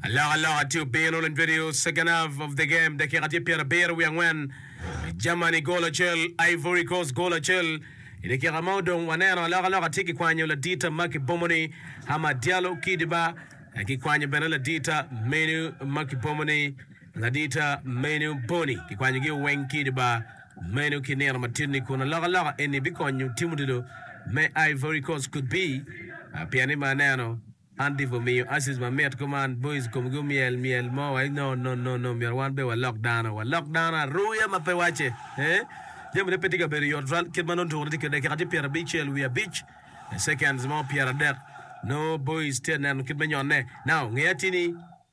Alokaloka tye obino in video, second half of the game, dakika tye pyerabiro wiye angwen, Germany gol acel, Ivory Coast gol acel. I dakika ma odong waneno alokaloka tye kikwanyo ladita ma kibomo ni Hamad Diallo ki diba, kikwanyo bene ladita meno ma kibomo ni ladita meno Bony, kikwanyogi weng ki diba. Meno ki nino matinni kun alokaloka eni bikonyo Timothy me Ivory Coast could be pien i ma aneno an Tipo miyo Asis ma mit kuman boys komgi omyel myel mo wai no no no no myero wan be walok dano walok dano aruya ma pe wace eh jami ne pe tye ka bedo yot twal kit ma nongo tukune tye ki dakika tye pyera bicel wiye abic seconds mo pyera dek no boys tye aneno kit me nyone now ngeya tye ni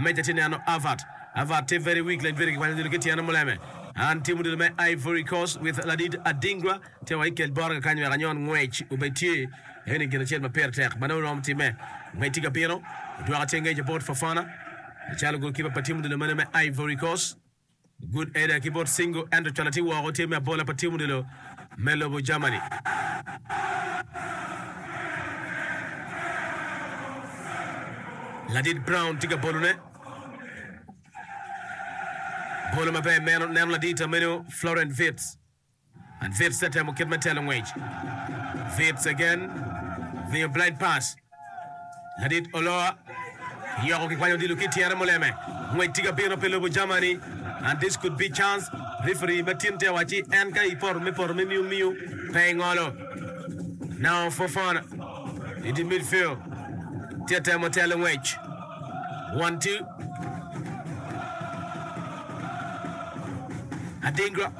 Meja tye neno Avat. Avat tye very weak like very kikwanyo odilo ki tyene muleme. An team odilo me Ivory Coast with Ladid Adingwa tye wa ikel boroga kany wek anyon ngwec obed tye. Eni gin acel ma pire tek ma dong romo timme. Ngec tye ka bino. Odwoka tye ngec about Fofana calo gol kipa pa team odilo mene me Ivory Coast. Good Ada ki bot Singo ento cwalo tye woko tye me abola pa tim odilo me lobo Germany. Ladit Brown tye ka bolone. Bolo maber meno neno ladit ameno Florent Wirtz. And Wirtz te temo kit me telo ngwec. Wirtz again miyo blind pass. Ladit Oloa yoko ki kwanyo odilo ki tyene muleme. Ngwec tye ka bino pi lobo Germany and this could be chance. Referee ma tin te wacci en ka ipoto me poto me miyo miyo pe ingolo. Now Fofana in the midfield tye temo telo ngwec. One two. Adingra.